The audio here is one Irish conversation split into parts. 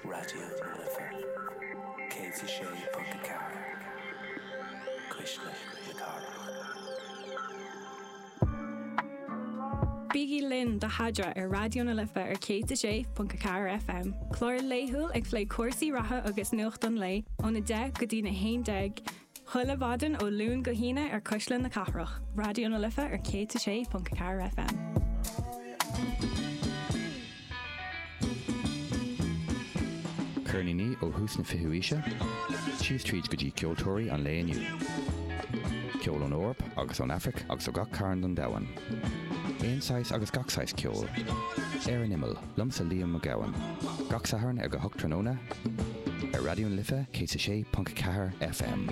Raidió na Life 106.4 Cuisle na Cathrach. Bígí linn do Hadra ar Raidió na Life ar 106.4 FM, clár laethúil ag plé cúrsaí reatha agus nuacht an lae ón 10 go dtí na 11 Chuile mhaidin ó Luan go hAoine ar Cuisle na Cathrach, Raidió na Life ar 106.4 FM. Ceirníní ó thús na fichiú aoise, síos tríd go dtí ceoltóirí an lae inniu. Ceol ón Eoraip agus ón Afraic agus ó gach cearn den domhan. Aon saghas agus gach saghas ceoil. Ar an imeall. Liomsa Liam Mac Gabhann. Gach Satharn ag a hocht tráthnóna ar Raidió na Life 106.4 FM.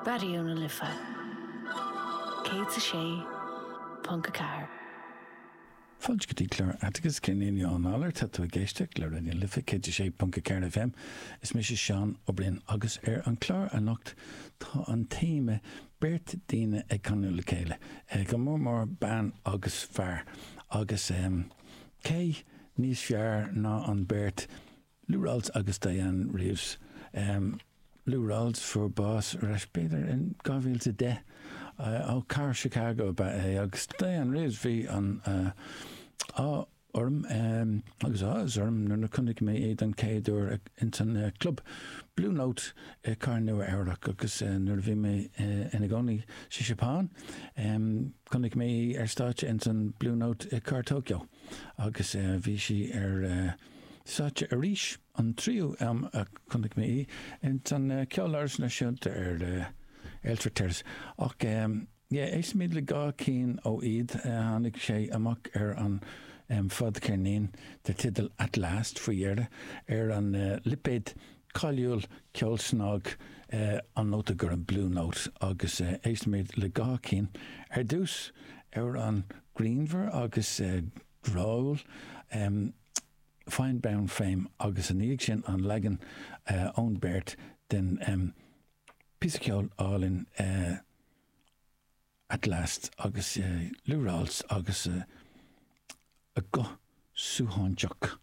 Raidió na Life. Céad is a sé ponc a ceathair. Fáilte go dtí clár Atticus, Cill Éinne ón Eolaire. Tá tú ag éisteacht le Raidió na Life 106.4 FM. Is mise Seán Ó Briain agus ar an chlár anocht tá an téama beirt daoine ag canadh le chéile, go mór mór bean agus fear, agus cé níos fearr ná an beirt, Lou Rawls agus Dianne Reeves. Lou Rawls fuair bás ar ais b'fhéidir in 2010. Ó cathair Chicago ab ea é agus Dianne Reeves. Bhí an ádh orm agus áthas orm nuair a chonaic mé é don chéad uair ins an club Blue Note i cathair Nua Eabhrac agus nuair a bhí mé ina gcónaí sa Seapáin chonaic mé í ar stáitse ins an Blue Note i cathair Tokyo agus bhí sí ar stáitse arís. An tríú am a chonaic mé í, ins an Ceoláras Náisiúnta ar Earlsfort Terrace. Ach yeah, éistimid le dhá cinn ó iad. Tháinig sé amach ar an fadcheirnín dar teideal At Last faoi dheireadh, ar an lipéad cáiliúil ceol snag, an nóta gorm, Blue Note, agus éistimid le dhá cinn. Ar dtús, amhrán grianmhar agus. bhríomhar, Fine Brown Frame agus ina dhiaidh sin an leagan ón beirt den phíosa ceoil álainn At Last agus Lou Rawls agus a guth suaithinseach.